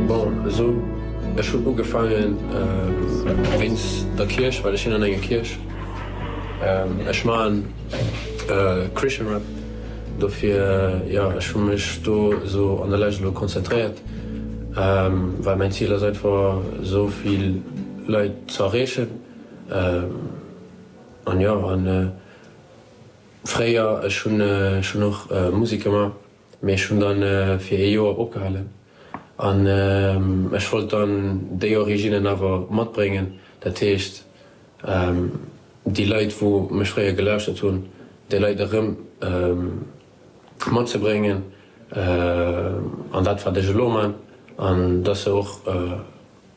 Bon, esou ech hun ugefangen wéinst der Kierch, well ech sin an enger Kierch. Ech maan Christian Rap, dofir jo, ech hun mech do esou an der Lescht elo konzentréiert, well mäin Ziel ass einfach esou vill Leit ze erreechen. An jo, an fréier ech hun ech hun och Musek gemaach. Mee ech hunn dann fir ee Joer opgehalen an ech wollt dann déi Originnen awer matbréngen, dat heescht déi Leit wou mech fréier gelauschtert hunn, déi Leit erëm matzebréngen an dat wat ech elo man an dass se och.